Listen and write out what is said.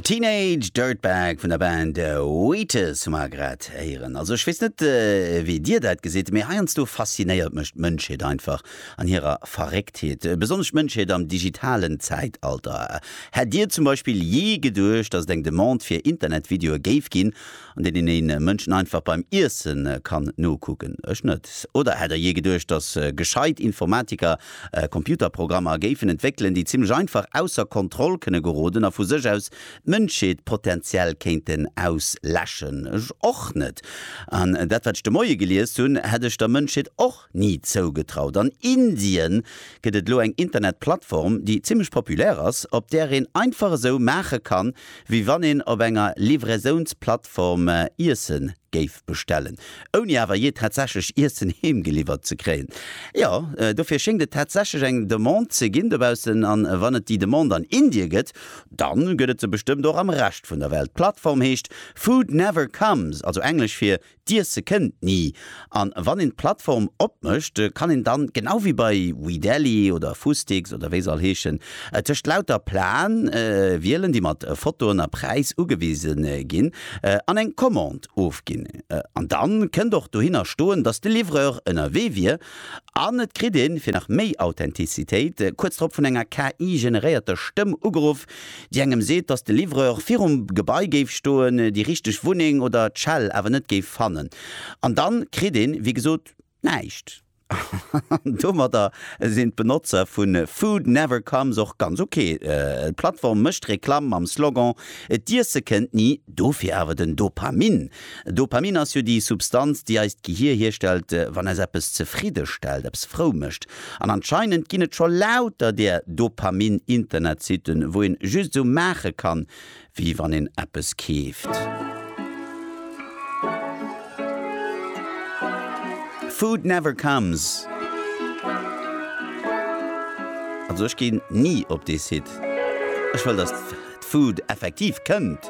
Teenage Dirtbag vun der Band Wheatus hu mer grad héieren. Also ech weess net wéi dir dat gesitt, mee heiansdo faszinéiert mech d'Mënschheet einfach an hirer Verrécktheet, besonnesch d'Mënschheet am digitalen Zäitalter. Hätt dir zum Beispill jee geduecht, datt et eng Demande fir Internetvideoe géif ginn an deenen een Mënschen einfach beim Iessen kann nokucken, ech net. Oder hätt der jee geduecht, dass gescheit Informatiker Computerprogrammer géifen entwéckelen, déi zimlech einfach ausser Kontroll kënne geroden a vu sech aus d'Mënschheet potenziell kéinten ausläschen? Ech och net. An dat wat ech de Moie geliest hunn, hätt ech der Mënschheet och ni zougetraut. An Indien gëtt et elo eng Internetplattform, déi zimmlech populär ass, op där een einfach esou maache kann, wéi wann een op enger Livraisounsplattform Iesse géif bestellen, ouni awer jee tatsächlech Iessen heemgeliwwert ze kréien. Jo, dofir schéngt et tatsächlech eng Demande ze ginn dobaussen. A wann et déi Demande an Indie gëtt, da gëtt et se bestëmmt och am Rescht vun der Welt. D'Plattform heescht Food Never Comes, also englesch fir D'Iesse kënnt ni. An wann een d'Plattform opmécht, kann een dann, genau wéi bei WeDeli oder Fustix oder wéi se all heeschen, tëscht lauter Plaen wielen, déi mat Fotoen a Präis ugewisen ginn, an eng Commande ofginn. An dann kënnt och dohinner stoen, dass de Livreur ënnerwee wier. An et kritt een, fir nach méi Authentizitéit, kuerz drop vun enger KI-generéierter Stëmm ugeruff, Déi engem seet, dass de Livreur virum Gebai géif stoen, déi richteg Wunneng oder d'Schell awer net géif fannen. An dann kritt een, wéi gesot, näischt. An domadder sinn d'Benotzer vu Food Never Comes och ganz ok. D'Plattform mécht Reklamm mam Slogan, D'Iesse kënnt ni, dofir awer den Dopamin. Dopamin ass jo déi Substanz, déi eist Gehir hierstellt, wann eis eppes zefridde stellt, eppes frou mécht. An anscheinend ginn et scho lauter där Dopamin-Internetsitten, wou een just esou maache kann, wéi wann een eppes keeft. Food never comes. Also ech ginn ni op dee Site. Ech wëll, dass d'Food effektiv kënnt.